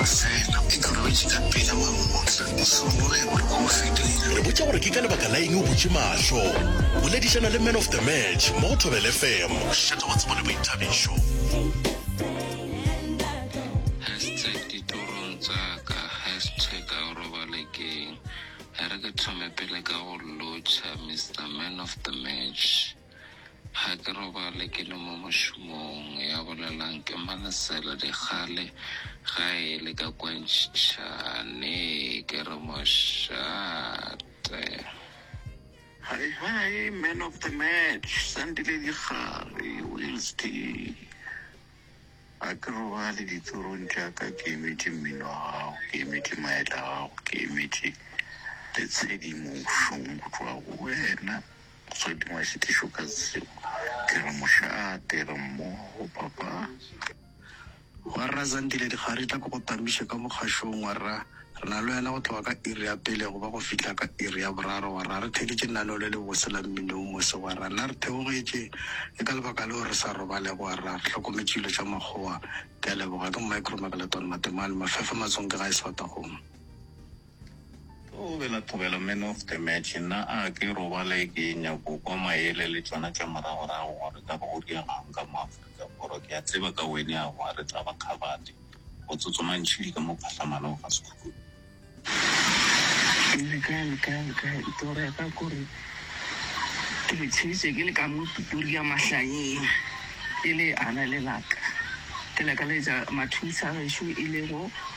Fela, e ka ba ba tšika pele mangotla, o se boge gore ke go fetile. Re botša gore ke ka lebaka la eng o butše mahlo. Boledišana le Man of the Match mo go Thobela FM go šiša taba tsebo le boithabišo. Hashtag ditorong tsa ka Hashtag a o robale keng? Ere ke thome pele ka go lotšha Mister Man of the Match. Ga ke robale ke le mo mošomong, ya bolelang ke Malesela Dikgale ga e le ka kwa Ntšhane, ke re mošate. Hi hi man of the match Sandile Dikgale, Wills D. Ga ke robale ditorong tša ka ke emetše mmino wa gago, ke emetše maetla a gago, ke emetše le tshedimošong go tšwa go wena. Motswadi wa šitišo ka tsebo. Ke re mošate, re mmogo, Papa. Wa Rra Zandile, Dikga re tla ko go tamiša ka mokgašong, wa Rra. Re na le wena go tloga ka iri ya pele go ba go fihla ka iri ya boraro, wa Rra. Re theeditše lenaneo le lebose la mmino wo mose, wa Rra. Na re theogetše? Ke ka lebaka leo re sa robalego, wa Rra. Re hlokometše dilo tša makgowa. Ke a leboga. Ke Micro Magleton Matemane, Mafefa Matsonke gae Swartagong. O bela Thobela man of the match. Nna a ke robale ke nyako kwa maele le tšona tša moragorago gore ka ba o diaga'ng ka mo Afrika Borwa. Ke a tseba ka wene a wa re tla ba kgabadi. O tsotsoma ntšhidi ka mo phatlhamanong ga sekhukhune. Ke re kae le kae le kae. Toro ya ka ke gore ke le tsheditše ke le ka mo Pretoria mahlanyeng e le ana le laka. Ke lakaletša Mathulisa a gešo e lego.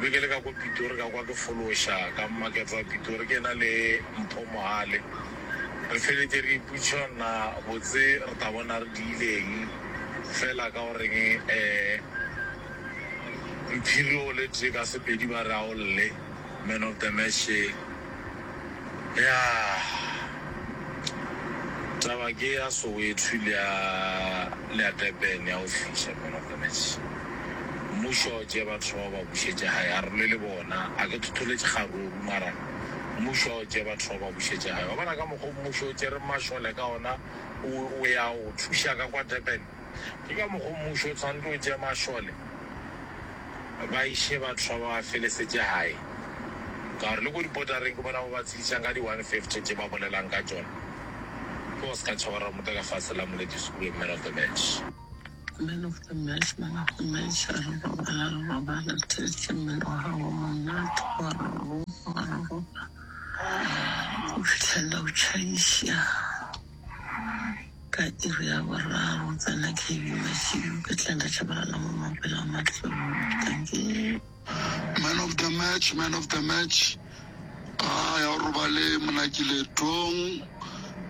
Be ke le ka kwa Pitori ka kwa ke fološa ka mmakete wa Pitori ke ena le Mpho Mohale. Re feletše re ipotšhonna botse re tla bona re diileng fela ka go reng Mphiri o le tee ka Sepedi ba re a o lle, man of the match ye. Ya taba ke ya Soweto le ya le ya Durban ya go fihla man of the match. Mmušo a o tšee batho bao ba bušetše gae a re lwe le bona a ke thotholetše kgaruru mara mmušo a o tšee batho bao ba bušetše gae. Wa bona ka mokgo mmušo o tšereng mašole ka ona o ya go thuša ka kwa Durban Ke ka mokgo mmušo o tshwanto o tšea mašole ba iše batho ba ba felesetše gae, ka gore le ko dipotareng ke bona ba ba tshedišang ka di 150 tše ba bolelang ka tšona. Ke go se ka tšhaba Ramota ka fase la Moleti Skhube, Man of the Match. Man of the Match, Man of the Match, a re robala, re robala, re theeditše mmele wa gago monate, wa re ropa, wa re ropa go fihlelela o tšhaiša. Ka iri ya boraro go tsena KB Mashilo ka tla nda tšhabalala mo mapela a matlou. Dankie. Man of the match, man of the match. Ga ya o robale Monakiletong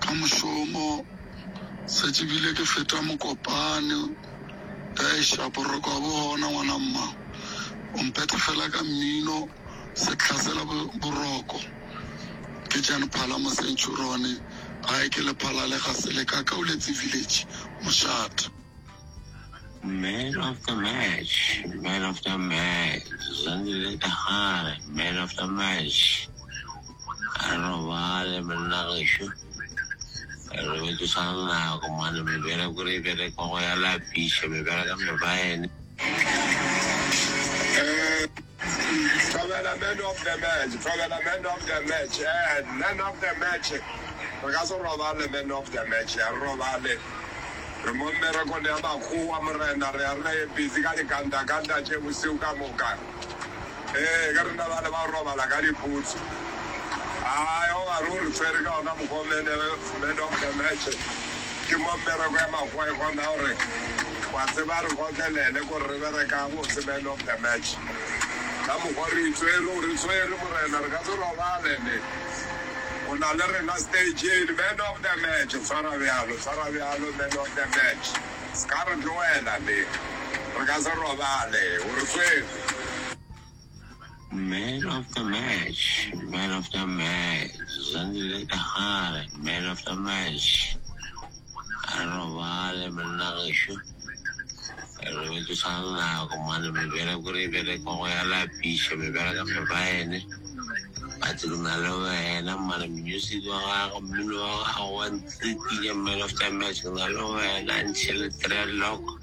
ka mošomo. Setše bile ke feta Mokopane. Eiša boroko ga bo gona ngwana mma. O mphetha fela ka mmino, sehla sela bo, boroko. Ke Jan Phala Mosenchurone gae ke le Phala le ga se le ka Kauletse village Moshate. Man of the match, man of the match, Zandile Dagare, man of the match. A re robale monna gešo, re robetše sa nako mane, mebereko re e berekwa go ya lapiša, mebereka mebaene. Thobela man of the match, thobela man of the match, eh, man of the match. Re ka se robale man of the match, a re robale. Re mo mmerekong ya makgowa morena, re a re busy ka dikandakanda tše bosiu ka moka. Ee, ke rena bale ba robala ka diputsu. Ai, o ba re o re tshwere ka ona mokgwa man of the match. Ke mo mmereko ya makgwae gona gore wa tseba re gotlelele gore re bereka botse man of the match ka mokgwa re itswere re tshwere morena re ka se robale ne o na le rena stageng man of the match tshwara bjalo tshwara bjalo man of the match se ka re tlogela ne re ka se robale o re tshwere Man of the match, man of the match, Zandile Kahare, man of the match. A robale monna gešo. Re be ke sa le nako mane mebereko re e bereka go ya lapiša mebereka mebaene. But ke na le wena mane music wa gago mmino wa gago wa ntlikinya man of the match ke na le wena until three o'clock.